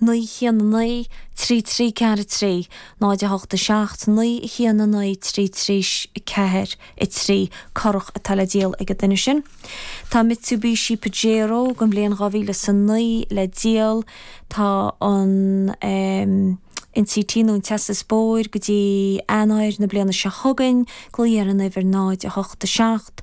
naoi haon a naoi trí trí ceathair a trí náid a hocht a seacht naoi haon a naoi trí trí ceathair a trí currach atá le díol ag an duine sin. Tá Mitsubishi Pajero den bhliain dhá mhíle is a naoi le díol. Tá an ehm. NCT nó an tástáil bóthair go dtí Eanáir na bliana seo chugainn. Glaoigh ar an uimhir náid a hocht a seacht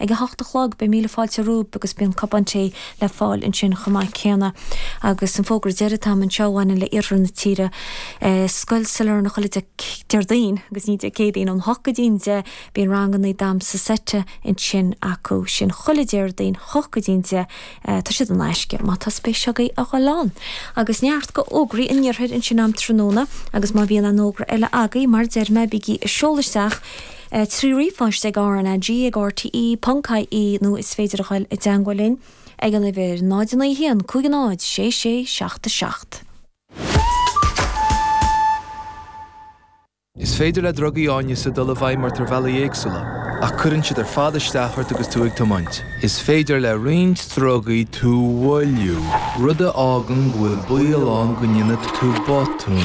Ag a hocht a chlog beidh Míle Fáilte romhaibh agus bíonn cupán tae le fáil ansin chomh maith céanna. Agus an fógra deiridh atá'm anseo a bhaineann le iarthar na tíre. Scoil Sailearna chuile Dé Déardaoin agus ní Dé Céadaoin, ón hocht go dtí'n deich bíonn ranganna damsa seite ansin acu. Sin chuile Déardaoin, hocht go dtí'n deich. Tá siad in aisce má tá spéis agaibh a dhul ann. Agus sin iad a bhfuil d'fhógraí an Iarthair ansin an tráthnóna agus má bhíonn aon fhógra eile agaibh mar a deir mé bígí ag seoladh isteach, trí ríomhphost RnaG ag rte, ponc, ie nó is féidir a ghoil i dteangmhail linn ag an uimhir 0901 50 6677. Is féidir le drugaí áineasa dul i bhfeidhm ort ar bhealaí éagsúla, ach cuireann siad ar fad isteach ort agus tú ag tiomáint. Is féidir le roinnt drugaí tú a mhoilliú, rud a fhágann go bhfuil baol ann go ndéanfaidh tú botún.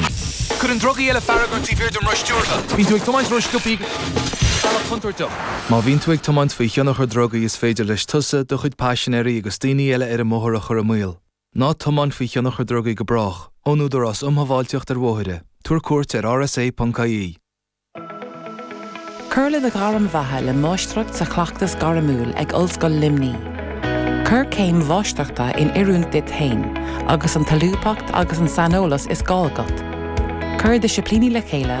Cuireann drugaí eile fearg ort taobh thiar den roth stiúrtha. Bíonn tú ag tiomáint ró-scioptha ar bhealach contúirteach. Má bhíonn tú ag tiomáint faoi thionchar drugaí is féidir leis tusa, do chuid paisinéirí agus daoine eile ar an mbóthar a chur i mbaol. Ná tiomáin faoi thionchar drugaí go brách, ón Údarás Um Shábháilteacht ar Bhóithre, tabhair cuairt ar rsa.ie. Cuir le do ghairm bheatha le Máistreacht sa Chleachtas Gairmiúil ag Ollscoil Luimní. Cuir céim Mháistreachta in oiriúint duit féin agus an tsolúbthacht agus an saineolas is gá agat. Cuir disciplíní le chéile